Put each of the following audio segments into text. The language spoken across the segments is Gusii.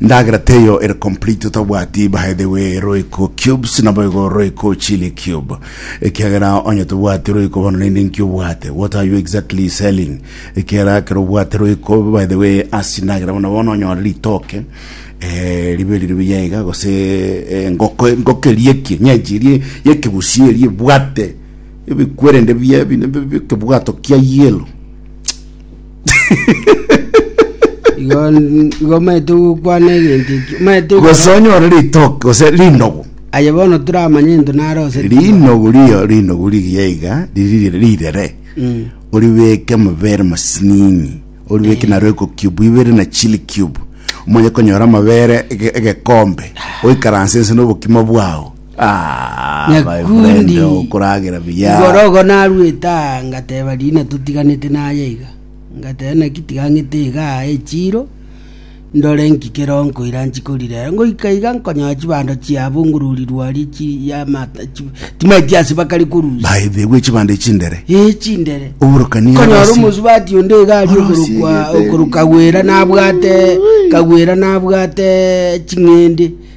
Ndagera teyo ere complete otabwati baedewe royco cubes naboigo royco chili cube ekiagera onye tobwati royco bono rende nki obwate what are you exactly selling ekiagera ekero obwate royco baedewe asi ndagera bono bono onyore ritoke eh, ribe riri buya iga gose eh, ngoko ngoko erie ki nyenchi erie yekebusi erie bwate ebikwerende bia bine bikebwato kia yellow igo igo omanyete gokwana egento ekio omanyete gose gokwana onyore ritoke gose rinogo aye bono toramanye into nare ose rinogo riyo rinogo rigiya iga riri rirere Mm. oribeke amabere masinini oribeke na royco cube oibere na chili cube omanye konyora amabere ege- egekombe oikaranse nse na obokima bwao Ah, my Nyakundi. friend, okoragera buya. Igorogo narwete aa ngateba rina totiganete naye iga ngateba naki tigang'ete iga aa echiro ndore nki kero nkoira nchikorire ngoika iga nkonyoa chibando chiabungururirwe aria chi ya mata chi- timaeti ase bakari korusia By the way, chibande chindere. ee chindere Oborokani konyora abasi. omosubati onde iga ari Orosi okorokwa egete. okorokagwera nabwate kagwera nabwate ching'ende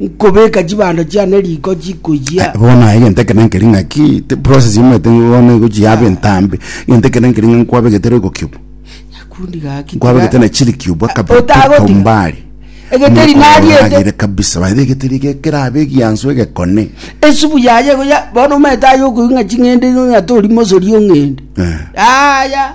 Nkobeka chibando chiane riko chikoyia. bono naye egento ekero nkeri ng'aki te process omanyete bono egochiaba entambe egento ekero nkeri ng'a nkwabegete roiko kiubu Nyakundi gaki. nkwabegete na chiri kiubu akabere Otagotiga. kaumbari Egeteri nariete. kabisa bae egeteri eke kerabe egiansu egekone Esubu yaye igo ya bono omanyete aye okoigwa ng'a ching'ende igo ng'a tori mosori ong'ende. Eh. Yaya.